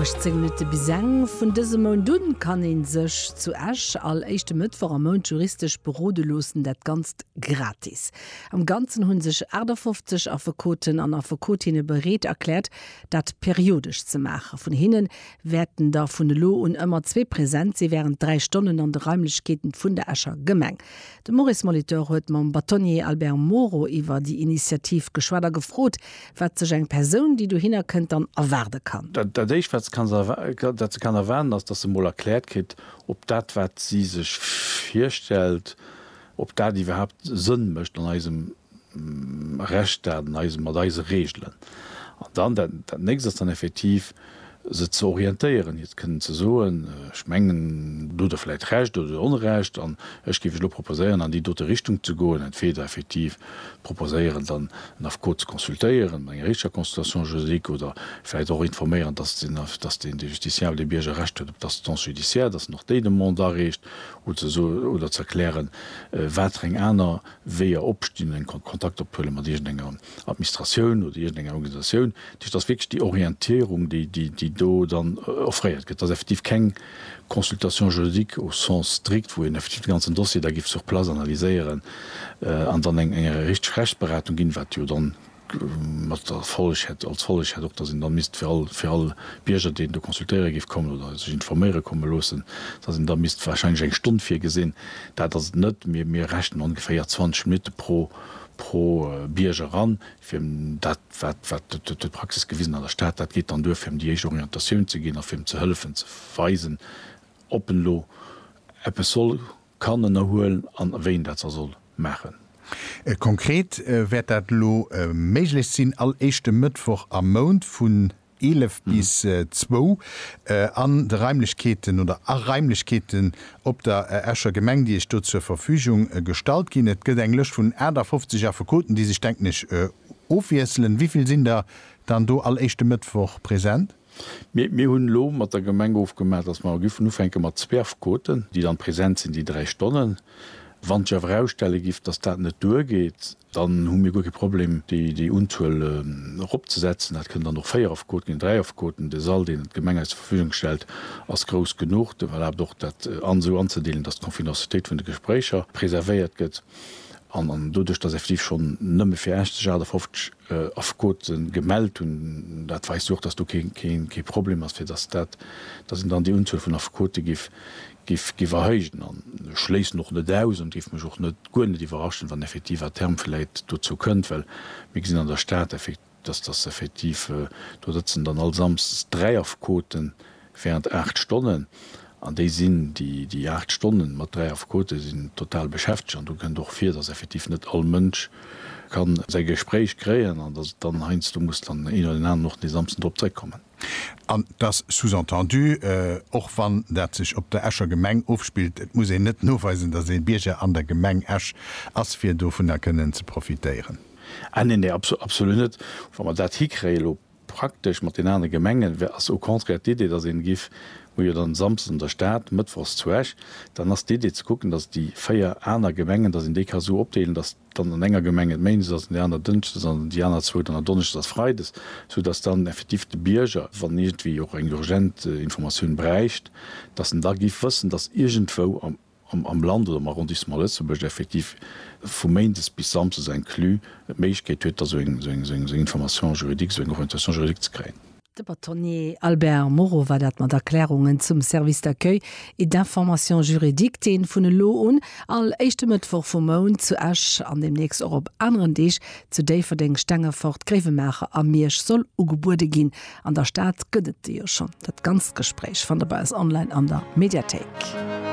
18 Minutte bis eng. Vun dësem Mount un kann een sech zu Esch all éischte Mëttwoch am Mount juristesch berode loossen, dat Ganzt gratis. Am Ganzen hunn sech 58 Affekoten an Affekotinne bereet erkläert, dat periodesch ze maachen. Vun hinnen wäerten der vun elo un ëmmer zwee present si wärend dräi Stonnen an de Raimlechkeeten vun der Escher Gemeng. De Maurice Molitor huet mam Bâtonnier Albert Moro iwwer déi Initiativ geschwat a gefrot, Wat sech eng Persoun, déi dohinner kënnt, dann erwaarde kann. Dat Éischt, wat se kann erwaarden, ass, datt se emol erkläert kritt, ob dat, wat si sech virstellt, ob dat iwwerhaapt Sënn mécht an eisem Rechtsstaat, mat eise Reegelen. An dann dat Nächst ass dann effektiv, se ze orientéieren, hiert kënnen ze soen, ech mengen, do hutt Der vläicht Recht oder do hutt Der Onrecht an ech géif Iech elo proposéieren, an déi dote Richtung ze goen, entweder effektiv proposéieren, dann en Affekot ze consultéieren, mat enger richteger Consultation juridique oder vläicht och informéieren, dass den, dass den, de Justiciable, de Bierger Recht huet op d'Assistance judiciaire, dass en och déi Demande areecht, oder ze so, oder ze erklären, watereng aner Weeër opstinn, eng Kontakt ophuele mat iergendenger. Administratioun oder iergendeng Organisatioun. Dat heescht, et ass wierklech déi Orientierung, déi do dann offréiert gëtt. Et ass effektiv keng Consultation juridique au sens strict, wou een effektiv de ganzen Dossier da géif sur place analyséieren an dann eng richteg Rechtsberatung ginn, wat jo dann mat der Folleg hätt, als Folleg hätt och, dass een da misst fir all, fir all Bierger, deen do consultéiere géif kommen oder sech informéiere komme loossen, dass een da misst warscheinlech eng Stonn virgesinn. Dat ass et net. Mir rechnen ongeféier 20 Minutte pro Bierger an, fir dat, wat d'Praxis gewisen an der Stad, dat geet dann duer, fir em déi éischt Orientatioun ze ginn a fir em ze hëllefen, ze weisen, ob en elo eppes soll, kann ënnerhuelen an wéi en dat da soll maachen. Konkret wäert dat elo méiglech sinn, all éischte Mëttwoch am Mount vun 11 bis 2 an de Raimlechkeeten oder a Raimlechkeeten op der Escher Gemeng, déi Iech do zur Verfügung gestallt ginn. Et gëtt eng Lëscht vun 58 Affekoten, déi sech, denken ech, ofwiesselen. Wivill sinn der dann do all éischte Mëttwoch present? Mir hunn elo mat der Gemeng ofgemaach, datt mer giffen ufänke mat zwee Affekoten, déi dann present sinn déi dräi Stonnen. Wann sech awer erausstelle giff, datt dat net duergeet, Dann hu mir guer kee Problem, déi Unzuel eropzesetzen. Dat kënnen dann och véier Affekoten ginn, dräi Affekoten. De Sall, deen d'Gemeng eis zur Verfügung stellt, ass grouss genuch. Dat erlaabt och, dat esou anzedeelen, dass d'Confidencialitéit vun de Gespréicher preservéiert gëtt. An doduerch, dass effektiv schonn nëmme fir Esch sech 58 Affekote gemellt hunn, dat weist jo och, dass do kee Problem ass, fir dass dat, dass een dann déi Unzuel vun Affekote Giff erhéijen an ech schléissen och net aus an giff mech och net guer net iwwerraschen, wann effektiv à terme vläit dozou kënnt, well mir gesinn an der Stad effektiv, dass dass effektiv do sëtzen dann all Samsdes dräi Affekoten während aacht Stonnen an déi sinn déi déi aacht Stonnen mat dräi Affekoten sinn total beschäftegt an do kënnt och vir, dass effektiv net all Mënsch kann säi Gespréich kréien an dass et dann heiansdo muss dann een oder deen aneren och dee Samsden drop zréckkommen. An et ass sous-entendu, och wann dat sech op der Escher Gemeng ofspillt, et muss een net noweisen, datt ee Bierger an der Gemeng Esch ass, fir dovunner kënnen ze profitéieren. Ah neen, neen, absolut net. Wa mer dat hikréien elo praktesch mat den anere Gemengen, wär, ass au contraire d'Idee, datt een giff, hu jo dann Samsdes an der Stad, Mëttwochs zu Esch, dann ass d'Idee ze kucken, datt déi véier aner Gemengen, datt een déi ka sou opdeelen, datt, dann an enger Gemeng et méindes ass, an där aner dënschdes an déi aner zwou dann donneschdes a freides, sou datt dann effektiv de Bierger, wann iergendwéi och eng urgent Informatioun bräicht, datt en da giff wëssen, datt iergendwou am Land oder am Arrondissement Lëtzebuerg effektiv vu méindes bis samsdes inclus d'Méiglechkeet huet, da sou eng Information juridique, sou eng Orientation juridique ze kréien. De Batonnier Albert Moreau war dat mat Erklärungen zum Service d'accueil et d'information juridique, deen vun elo un all éischte Mëttwoch vum Mount zu Esch an deemnächst och op aneren Deeg zu Déifferdeng, Stengefort, Gréiwemaacher a Miersch soll ugebuede ginn. An der Stad gëtt et de jo schonn. Dat ganzt Gespréich fannt der bei eis online an der Mediathéik.